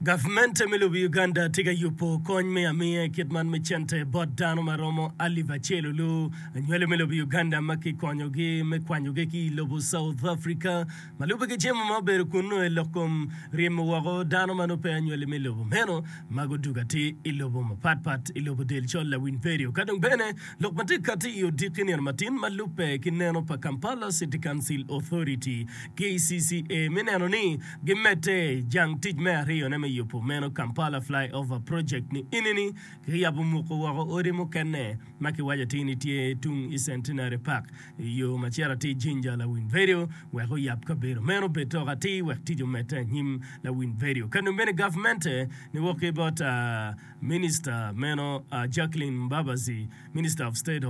Gavmente me lobo Uganda tye ka yubo kony me amiya i kit man me cente bot dano ma romo alip acel olu anywali me lobo Uganda ma kikonyogi me kwanyogi ki i lobo South Africa ma lubbe ki jemo ma obedo kunnu i lok kom ryemo woko dano ma nongo pe anywali me lobo meno ma gudugo atir i lobo mapat pat i lobo del col lawiny perio ka dong bene lok ma tye kati i odiki nino matin ma lubbe ki neno pa Kampala City Council Authority, KCCA, me neno ni Gimedde jang tic me aryone me yubo meno Kampala Flyover Project ni enini kiyabo muko woko odi mukene ma kiwaco atir ni tye tung i Centenary Park i yo ma cito atir Jinja Lawin Vedio wek oyab kabedo meno obed tok atir wek tic omedde anyim Lawin Vedio ka nongo bene gavmente ni wok ki bot Minista meno Jacqueline Mbabazi Minister of State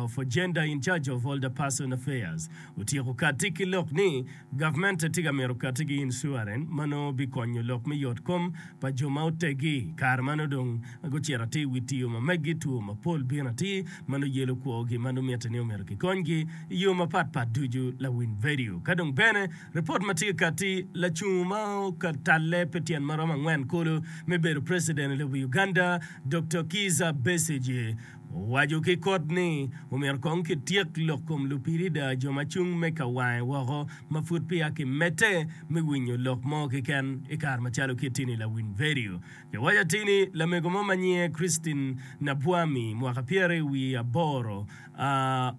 for Gender in Charge of Older Person Affairs otyeko katti ki lok ni Gavmente tye ka mito katti ki incuaren ma nongo bikonyo lok me yotkom pa jo ma oteggi. Kare ma nongo dong gucito atir wi tiyo ma meggi, two mapol bino atir ma nongo yelo kwogi ma nongo mitte ni omyero kikonygi i yo mapat pat ducu. Lawiny vedio ka dong bene ripot ma tye katti, Lacung ma okatalle pi tyen ma romo angwen kulu me bedo preciden i lobo Uganda, Doktor Kiiza Besigye, Owaco ki kot ni, Omyero kong kityek lok kom lupirida, jo ma cung me ka wange woko, ma pud peya kimedde me winyo lok mo keken i kare macalo kitti-ni. Lawiny vedio. Kiwaco atini lamego mo ma nyinge Christine Nabwami, mwaka pyere wiye aboro,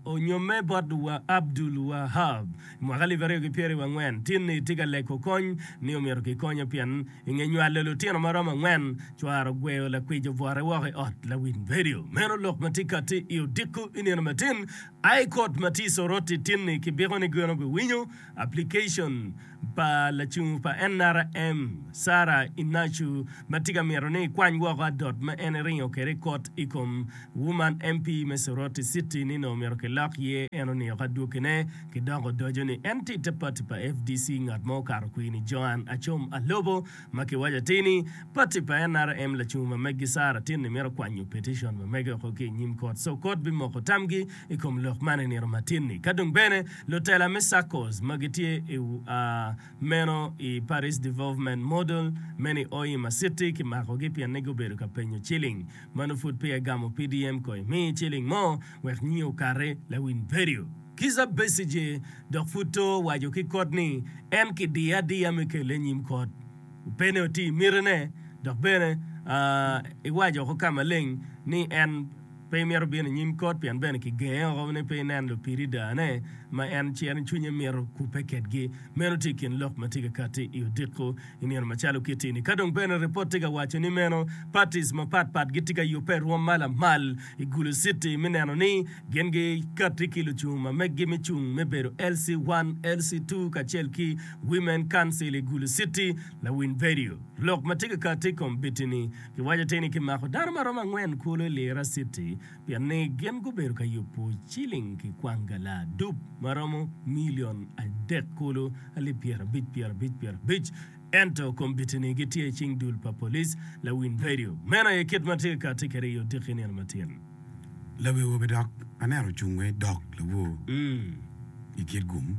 onyomme bot Abdul Wahab i mwaka alip aryo ki pyeraryo wangwen, tinni tye ka leko kony ni omyero kikonye pien I nge nywalo lutino ma romo angwen, cware ogweyo lakwic obwote woko i ot lawiny redio. Meno lok ma tye kati i odiko i nino matin. High Court ma tye i Soroti tinni ki biko ni geno giwinyo application pa lacung pa NRM, Sarah Inachu ma tye ka mito ni ekwany woko adot ma en eringo kwede i kot i kom Woman MP me Soroti City ni nongo myero kilok ye en oniko adwogine. Ki dok odoco ni, En tye te pati pa FDC, ngat mo okato kwir ni Joan Acom Alobo, ma kiwaco atir ni, pati pa NRM lacungo ma megi Sarah Tinni mito kwanyo peticion ma mege oko ki i nyim kot, so kot bimoko tamgi i kom lok man i nino ma tinni. Ka dong bene, lutela me SACCOs ma gitye i meno i Paris Development Model men i Oima City kimakogi pien ni gubedo ka penyo ciling ma nongo pud peya gamo PDM kong imi ciling mo wek nyi okati, Lawin Berio. Kizza Besigye dok pud to waco ki kot ni en ki diye adiya me kele i nyim kot. Opene oti imiti ne dok bene i waco oko ka maleng ni en pe imito bino i nyim kot pien bene ki genge oko ni pe inen lupiri daa ne ma en ci en cwinye mito kubbe kedgi. Meno tye i kin lok matye kakati i odiko. I nino macalo kitti-ni, ka dong bene ripot tye ka waco ni meno, patis mapat pat gitye ka yubbe i rwom ma lamal i Gulu Citi me neno ni gin gikatti ki lucung ma meggi me cung me bedo LC one, LC two kacel ki Women Council i Gulu Citi. Lawiny Vedio. Lok ma tye ka katti i kom biti-ni, Kiwaco te ni kimako dano ma romo angwen kulu i Lira Citi pien ni gin gubedo ka yubo ciling ki kwang gala adup ma romo milion adek kulu alip pyerabic pyerabic pyerabic, ento kombitini gitye i cing dul pa polic lawiny redio. Meno aye kit ma tye ka ti kede i odiki nino ma tyen. Lawi awobi dok aneno ocung wa i dog labwor i kit gum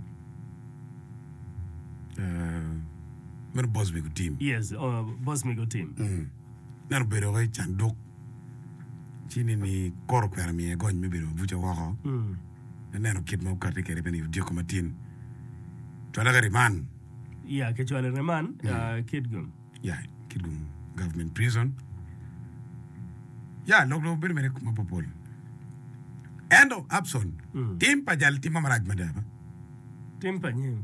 meno boss me gutim. Yes, boss me gutim. Meno obedo wai canduk ci ni ni koro okwero miye gony me bedo mabuca woko me neno kit ma okati kede bene i odyeko matin cwale ki riman Ya, kicwalo i reman ah, Kitgum. ya kidum government prison ya lok dong bedo mere kuma popol ento Abson tim pa jal timma marac mada ba Tim pa nyim.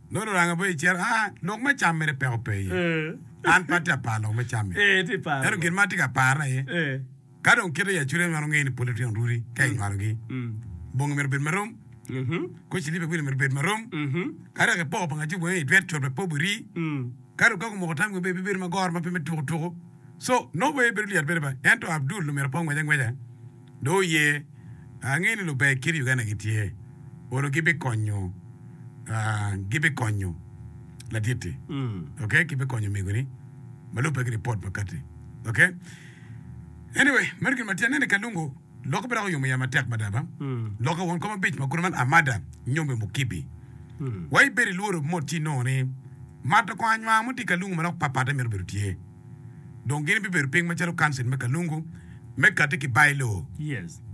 Nongo luranga pe iciro. Aa, lok me cam mere peko pe iye. An pe atye ka paro lok me cam-mi. Ento gin ma atye ka parone aye, ka dong kite i acude nywalo ngeye ni pol litino ruri ka inywalogi, bongi myero obed marom, kor cilipa i wilo myero obed marom, ka dok ipoko pa ngaci wenge i dwet cot pe pe obiri, ka dong ka gumoko tam gin bene bibedo ma goro ma pe me tuku tuku. So, no way bedo lyet bene ba, ento Abdul omyero pe ongwec angweca. Dong oye, angeyo ni luber kit Uganda gitye, oro gibi konyo, gibi konyo latitti, ok, gibi konyo omegoni ma lubbe ki report makati, ok, anyway meno gin matin, aneno i Kalungu lokke pe dok oyomo ya matek mada ba, lokke won kom abic ma kune man Amada, Nyombe, Mukibi, wa ibedo ilworo mot ci inongo ni mato kong anywang mo tye i Kalungu ma dok pat patte mito bedo tye. dong gin bibedo piny macalo Kancil me Kalungu me Kati ki Bailoo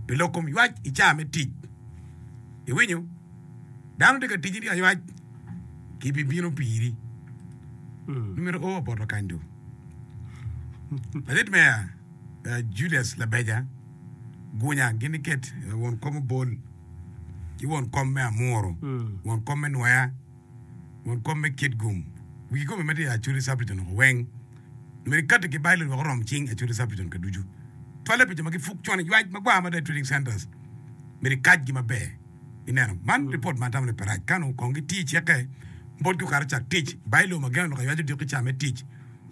pi lok kom ywac i caa me tic. Iwinyo? Dano tye ka tijini aywac, gibibino piri. Nongo myero o apoto kany dong. Ladit meya eh, Julius Labeja gunya gin iket eh, won kom Obol ki won kom me Amuru, won kom me Nwoya, Won kop me kit gum wi kikopo ma tye i Acholi Subregion loko weng. Omyero ikati ki Bailey wek orom cing i Acholi Subregion ka ducu. Cwalle pi jo ma gipuk con iywac magwar mada i Trading Centres myero ikacgi maber. Ineno? Man ripot ma atamo ni pe rac. Kano kong giti ceke bot ki okato cak tic. Bailey omagen oloko iywac odiko ki ca me tic.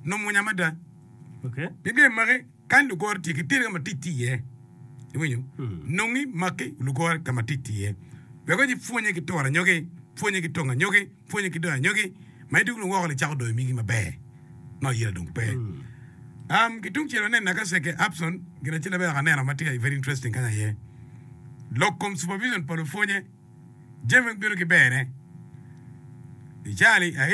Nongo mwonya mada. Pi gem magi. Kany lugoro tye, kiter ka ma tic tye iye. Iwinyo? Nongi, maki, lugoro ka ma tic tye iye. Wek kony ipwonye ki turo anyogi, pwonye ki tongo anyogi, pwonye ki doyo anyogi. Ma idwogo dong woko-ni icako doyo migi maber, ma oyira dong pe. Um, ki tung cel wanen naka Ceke Upson, gin acel abedo ka aneno ma tye ka very interesting kany aye. Lok kom supervision pa lupwonye, jami weng bino ki berne. Icali, airi.